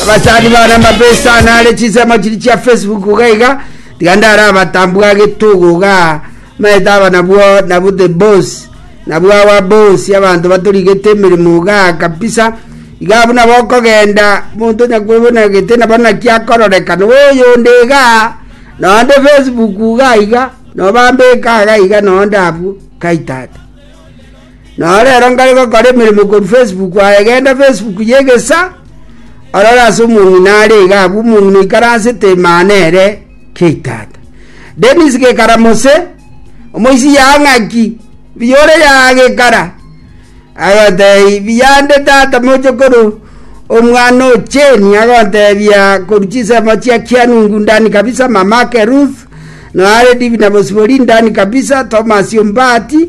abasani bane amabesa ane are chisemo chiri chia facebook iga iga tiga ndare abatambua getogo iga maete aba nabwo nabwo the boss nabwo awa boss abanto batorigete emeremo iga kabisa iga abwo nabo okogenda omonto onyakwebonagete nabo naki akororeka nabo oyonde iga nonde facebook iga iga nobambeka iga iga nonde abwo kai tata Naro ero ngare gokora emeremo korwa Facebook aye, genda Facebook y'egesa, orore ase omong'ina are iga abwo, omong'ina oikaransete Imana ere kia itaata. Dennis Gekara Mose, omoisia ya ng'aki, mbuya ore ya Gekara, agotebia, mbuya nde tata mochokoro, omwana o Jane, agotebia korwa chinsemo chia Kianungu, ndani kabisa, mamake Ruth, naro Divina Bosibori, ndani kabisa, Thomas Ombati,